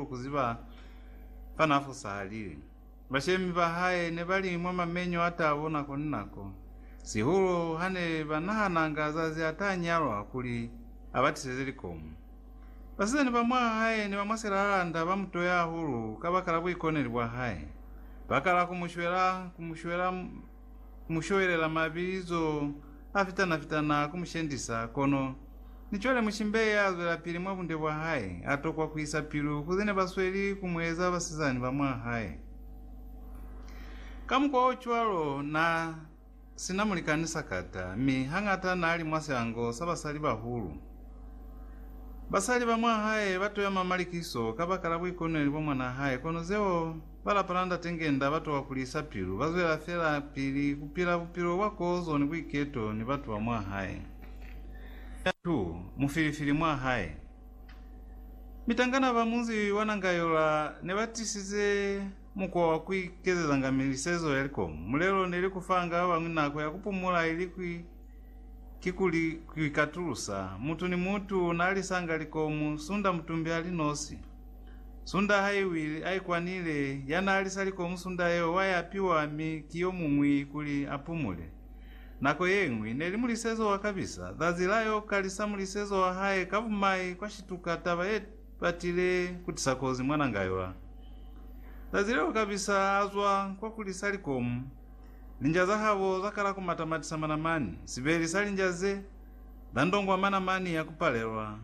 hahulu ku ziba fa n'a fosahalile. Bashemi ba hae ne ba li mwa mamenyo a tabo nako ni nako, sihulu ha ne ba nahananga zazi a t'a nyalwa kuli a ba tiseze likomo. Basizani ba mwa hae ni ba mwa silalanda ba mu toya hahulu kabakala buikoneli bwa hae, ba kala ku mu shwela, ku mu shwela, Ku mu showelela mabizo a fitana-fitana ku mu shendisa, kono ni cwale mushimbe ya zwelapili mwa bunde bwa hae a tokwa ku isa pilu ku ze ne ba sweli ku mu eza basizani ba mwa hae. Ka mukwa o cwalo, n'a si na mulikani sakata, mi hañata n'a li mwa siango sa basalibahulu. Basali ba mwa hae ba toyama malikiso kabakala buikoneli bwa mwanaa hae, kono zeo Ba lapa la Ndate Ngenda ba towa ku lisa pilu, ba zwela fela pili ku pila bupilo bwa kozo ni buiketo ni batu ba mwa hae. Nda Tu mu filifili mwa hae. Mitangana ba munzi wa Nangayola ne ba tisize mukwa wa ku ikezezanga milisezo ya likomu. Mulelo ne li ku fanga ba bañwi nako ya ku pumula ili ki ku li ku ikatulusa. Mutu ni mutu na lisanga likomu sunda mutumbi a li nosi. Sunda ha i wile, a ikwanile. Ya n'a lisa likomu sunda yeo wa ya piwa mi ki yo muñwi kuli a pumule. Nako ye ñwi, ne li mulisezo wa kabisa. Zazi la y'o kalisa mulisezo wa hae ka bumai kwa shituka taba ye batile ku tisa kozi mwananga yo. A zazi leo kabisa a zwa kwa ku lisa likomu, linja za habo za kala ku mata-matisa manamani, sibeli sa linja ze, za ndongwa manamani ya ku palelwa.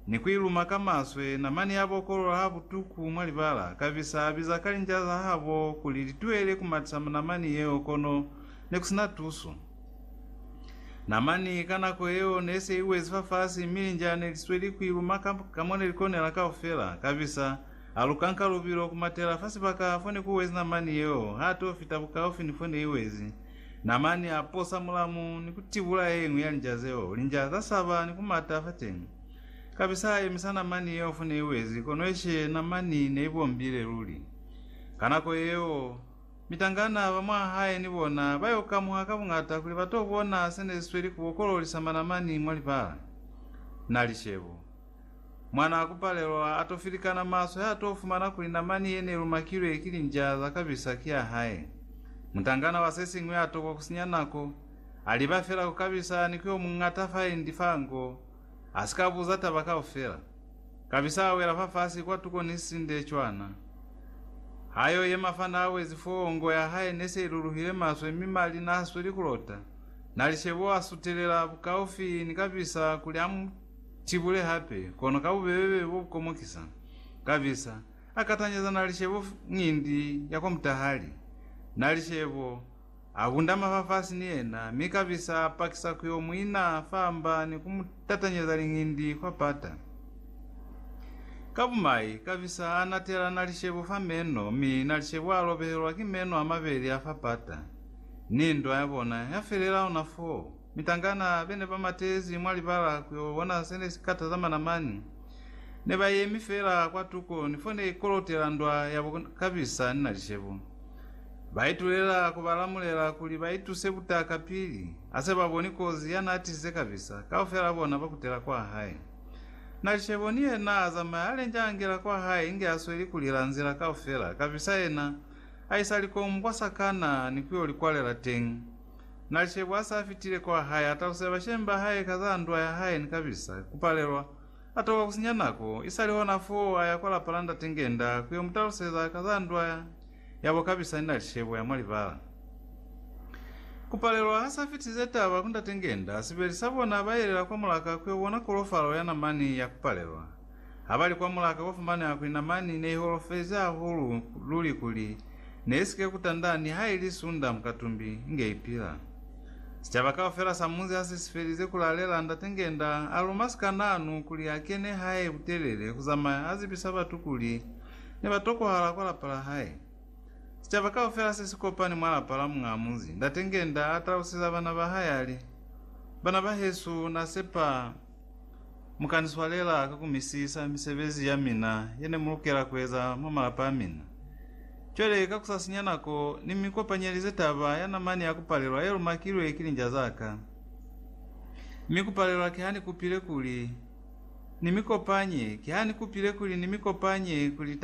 Ni ku i luma ka maswe, namani ya bokolola ha butuku mwa libala, kabisa a biza ka linja za habo kuli li tuele ku matisa namani yeo kono ne ku sina tuso. Namani ka nako yeo ne se i wezi fafasi mi linja ne li sweli ku i luma ka, ka mo ne li konela kaufela. Kabisa a luka nka lubilo ku matela fa sibaka fo ne ku wezi namani yeo, ha to fita bukaufi ni fo ne i wezi. Namani a posa mulamu ni ku tibula ye ñwi ya linja zeo. Linja za saba ni ku mata fateñi. Kapisa a yemisa namani yeo fone i wezi, kono exe namani ne i bombile luli. Ka nako yeo, mitangana ba mwahae ni bona ba yo kamuha ka buñata kuli ba to bona se ne si sweli ku bokololisamba namani mwa libala. Na li shebo. Mwanaa ku palelwa, a to filikana maswe ha to fumana kuli namani ye ne lumakilwe ki linja za kabisa ki ya hae. Mutangana wa se siñwi a tokwa ku sinya nako, a liba fela ku kabisa ni ku yo muñata fa endi fa ngo, a si ka buza taba kaufela. Kabisa a wela fafasi kwa tuko ni sisinde cwana. Ha yo yema fa n'a wezi foo, ngo ya hae ne se i luluhile maswe mi mali n'a sweli ku lota. N'a li shebo a sutelela bukaufi ni kabisa kuli a mu. Tibule hape, kono ka bubebe bo bu komokisa, Kabisa a katanyeza nalishebo ngindi ya kwa mutahali. Nalishebo a bundama fa fasi ni yena, mi kabisa a pakisa ku yo mu ina fa mba ni ku mu tatanyeza lingindi kwa pata. Ka bumai, kabisa a natela nalishebo fa meno, mi nalishebo a lobehelwa ki meno a mabeli a fa pata, ni ndwa ya bona ya felela ona foo. Mitangana bene ba matezi mwa libala ku yo bona se ne si ka tazamana mani. Ne ba yemi fela kwa tuko ni fo ne i kolotela ndwa ya bo Kabisa ni Nalishebo. Ba itulela ku ba lamulela kuli ba ituse butaka pili a se ba boni kozi ya n'a tisize Kabisa, kaufela bona ba kutela kwa hae. Nalishebo ni yena a zamaya a lenja a ngela kwa hae inge a sweli ku lila nzila kaufela, Kabisa yena a isa likomu kwa sakana ni ku yo li kwalela teñi. Na shebo ha sa fitile kwa hae, a talusela bashemi ba hae ka za ndwa ya hae ni kabisa ku palelwa. A toka ku sinya nako. Isali hona foo a ya kwa lapa la Ndate Ngenda ku yo mu taluseza ka za ndwa yabo kabisa ni nali shebo ya mwa libala. Ku palelwa ha sa fitilize taba ku Ndate Ngenda, sibeli sa bona ba yelela kwa mulaka ku yo bona kolofalo ya namani ya ku palelwa. Habali kwa mulaka kwa fumaneha kuli namani ne iholofezi hahulu luli kuli ne isike kutanda nihaili sunda mukatumbi nge ipila. Sicaba kaufela sa munzi hase sifelize kulalela, Ndate ngenda aluma sikananu kuli akene hae butelele kuzamaya azibisa batu kuli nebatokohala kwa lapa lahae. Sicaba kaufela sesikopani mwa lapa la muñaa munzi, Ndate ngenda atalusiza bana bahae ali, Bana bahesu nasepa Mu ka ni swalela ka ku misisa misebezi ya mina ye ne mu lukela ku eza mwa malapa a mina. Cwale, ka ku sa sinya nako, ni mi kopanyelize taba ya namani ya ku palelwa ye lumakilwe ki linja za ka. Mi ku palelwa ki ha ni kupile kuli ni mi kopanye, ki ha ni kupile kuli ni mi kopanye kuli taba